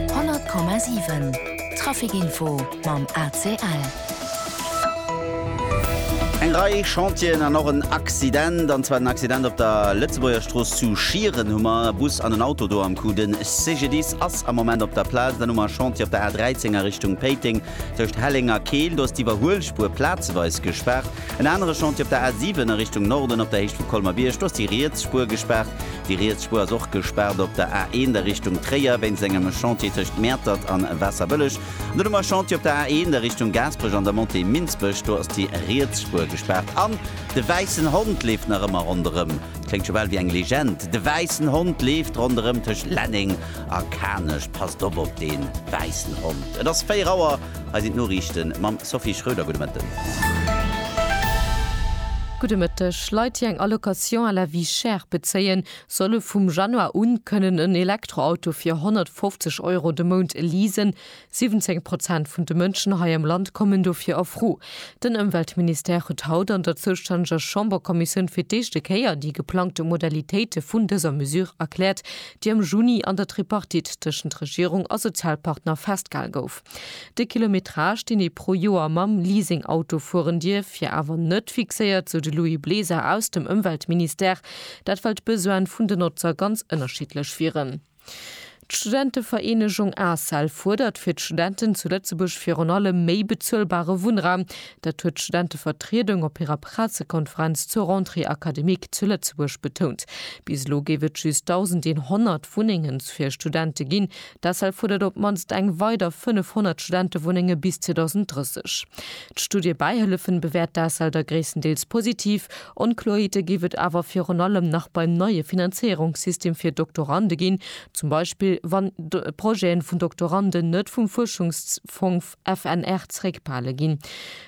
100,7 Trafic-Info mam ACL. Eng Rei Chantieren an och en Accident, an zwar den Accident op der Lëtzebuergerstrooss zu Schieren. Hu mer e Bus an en Auto do am Coup. De CGDIS ass am Moment op der Plaz. Dann hu mer e Chantier op der A13 a Richtung Péiteng tëscht Helleng a Keel. Do ass d'Iwwerhuelspuer plazeweis gespaart. En anere Chantier op der A 7 a Richtung Norden op der Héicht vu Colmer-Bierg. Do ass déi riets Spuer gespaart. Déi riets Spuer ass och gespaart op der A 1 a Richtung Tréier wéinst engem Chantier tëscht Mäertert an Waasserbëlleg. An dunn hu mer e Chantier op der A 1 a Richtung Gaasperech an der Montée Minsbech. Do ass déi riets Spuer gespaart. An de wäissen Hond leeft nach ëmmer ronderëm. Kléngt scho bal wéi eng Legend. De wäissen Hond leeft ronderëm tëscht Lenneng a Kanech. Passt op op dee wäissen Hond. Et ass 4 Auer. Hei sinn d'Noriichten mam Sophie Schröder. Gudde Mëtten. Gudde Mëtteg. Leit, déi eng Allocation à la vie chère bezéien, solle vum Januar u kënnen en Elektroauto fir 150 Euro de Mount leasen. 17 Prozent vun de Mënschen hei am Land kommen dofir a Fro. Den Ëmweltministère huet haut an der zoustänneger Chamberkommissioun fir d'éischte Kéier déi geplangte Modalitéite vun dëser Mesure erkläert, déi am Juni an der Tripartite tëschent Regierung a Sozialpartner festgehal gouf. De Kilometrage, deen ee pro Joer mam Leasing-Auto fueren dierf, wier awer net fixéiert, sou de Louis Bleser aus dem Ëmweltministère. Dat well d'Besoine vun den Notzer ganz ënnerschiddlech wieren. D'Studentevereenegung ACEL fuerdert fir d'Studenten zu Lëtzebuerg virun allem méi bezuelbare Wunnraum, Dat huet d'Studentevertriedung op hirer Pressekonferenz zur Rentrée académique zu Lëtzebuerg betount. Bis elo géif et just 1.100 Wunnengen fir Studente ginn. D'ACEL fuerdert op d'mannst eng weider 500 Studentewunnenge bis 2030. D'Studiebäihëllefen bewäert d'ACEL da gréisstendeels positiv. Onkloerheete géif et awer virun allem nach beim neie Finanzéierungssystem fir Doktorande ginn, zum Beispill wann Projete vun Doktoranden net vum Fuerschungsfong FNR zréckbehale ginn.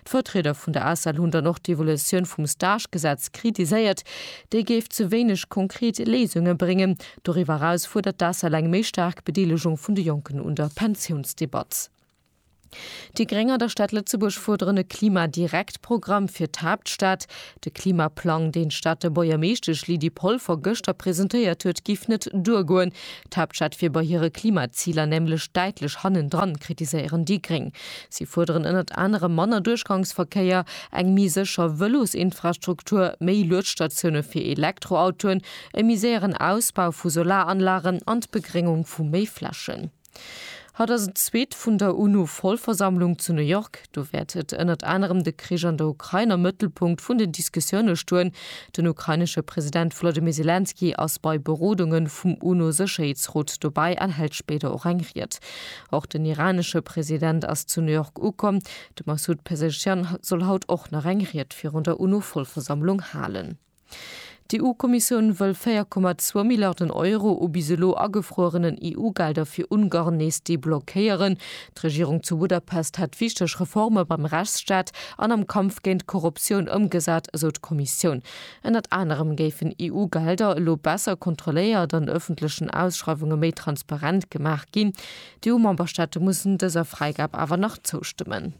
D'Vertrieder vun der ACEL hunn dann och d'Evolution vum Stagegesetz kritiséiert. Déi géif ze wéineg konkret Léisunge bréngen. Doriwwer eraus fuerdert d'ACEL eng méi staark Bedeelegung vun de Jonken un der Pensiounsdebatt. Déi Gréng an der Stad Lëtzebuerg fuerderen e Klima-direkt-Programm fir d'Haaptstad. De Klimaplang, deen d'Stater Buergermeeschtesch Lydie Polfer gëschter presentéiert huet, giff net duergoen. D'Haaptstad wier bei hire Klimaziler nämlech däitlech hannendran, kritiséieren déi Gréng. Si fuerderen ënnert anerem manner Duerchgangsverkéier, eng méi sécher Vëlosinfrastruktur, méi Luedstatioune fir Elektroautoen, e méi séieren Ausbau vu Solaranlagen an d'Begréngung vu méi Flächen. Haut ass en zweet vun der UNO-Vollversammlung zu New York. Do wäert et ënnert anerem de Krich an der Ukrain am Mëttelpunkt vun den Diskussioune stoen. Den ukrainesche President Volodymyr Selenskyj ass bei Berodunge vum UNO-Sécherheetsrot dobäi an hält spéider och eng Ried. Och den iranesche President ass zu New York ukomm. De Massoud Pezeshkian soll haut och nach eng Ried virun der UNO-Vollversammlung halen. D'EU-Kommissioun wëll 4,2 Milliarden Euro u bis elo agefruerenen EU-Gelder fir Ungarn nees deblockéieren. D'Regierung zu Budapest hätt wichteg Reforme beim Rechtsstaat an am Kampf géint d'Korruptioun ëmgesat, esou d'Kommissioun. Ënnert anerem géifen EU-Gelder elo besser kontrolléiert an ëffentlechen Ausschreiwunge méi transparent gemaach ginn. D'EU-Memberstaate mussen dëser Fräigab awer nach zoustëmmen.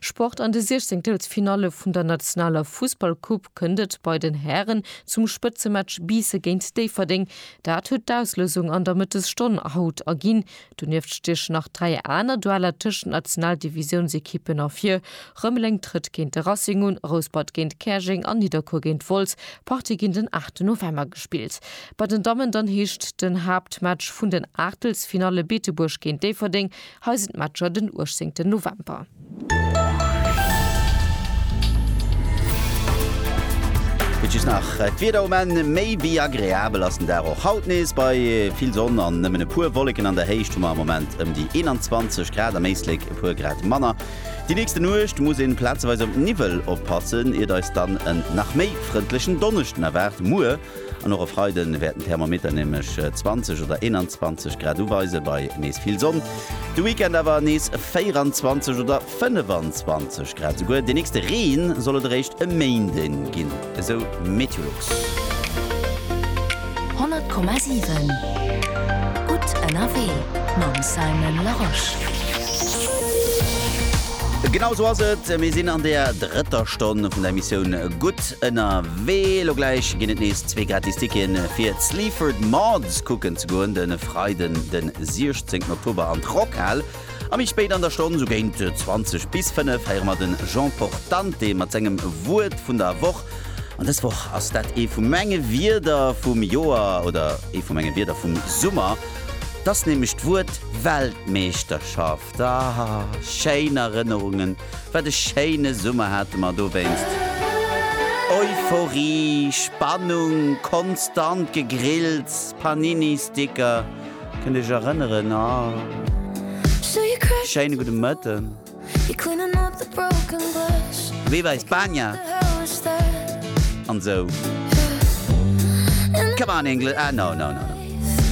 Sport, An de 16 Telsfinalle vun der nationaler Fussballcoupe kënnt et bei den Hären zum Spëtzematch Biisse géint Déifferdeng. Dat huet d'Auslousung an der Mëttesstonn haut erginn. Donieft stiechen nach dräi aner Dueller tëschent Nationaldivisiounsekippen ervir. Rëmeleng trëtt géint de Racing un, Rouspert géint Käerjeng an Nidderkuer géint Wolz. D'Partie ginn den 8 November gespillt. Bei den Dammen dann heescht den Haaptmatch vun den Aachtelsfinalle Beetebuerg géint Déifferdeng Hei sinn d'Matcher den 18 November. Et just nach d'Wieder um Enn, méi wéi agreabel ass den Dag och haut nees. Bei vill Sonn an nëmmen e puer Wolleken an der Héicht hu mer am Moment ëm déi 21 Grad, am Éislek e puer Grad manner. Déi nächste Nuecht muss een plazeweis op Niwwel oppassen, iert eis dann en nach méi frëndlechen Donneschden erwaart. Muer. An och e Freide wäert den Thermometer nämlech 20 oder 21 Grad uweisen, bei nees vill Sonn. De Weekend awer nees 24 oder 25 Grad. Esouguer dee nächste Reen soll et eréischt e Méinde ginn, esou Meteolux. 100,7 Gutt ënnerwee mam Simon Larosche. Genau esou ass et, mir sinn an der drëtter Stonn vun der Emissioun Gutt. Ënnerwee. Elo gläich ginn et nees zwee gratis Ticketen fir Sleaford Mods kucken ze goen, de Freiden de 16 Oktober an d'Rockhal a méi spéit an der Stonn, sou géint 20 bis 5, héiere mer de Jean Portante mat sengem Wuert vun der Woch. An dës Woch ass dat ee vu menge Wierder vum Joer oder ee vu menge Wierder vum Summer. T'ass nämlech d'Wuert Weltmeeschterschaft. Ahh, schéin Erënnerungen, wat e schéine Summer hate mer dowéinst. Euphorie, Spannung, konstant Gegrills, Panini-Sticker, kënnt iech erënneren? Ahh, schéine gudde Mëtten. Viva España! an esou. Come on Engl. Ahh, no, no, no.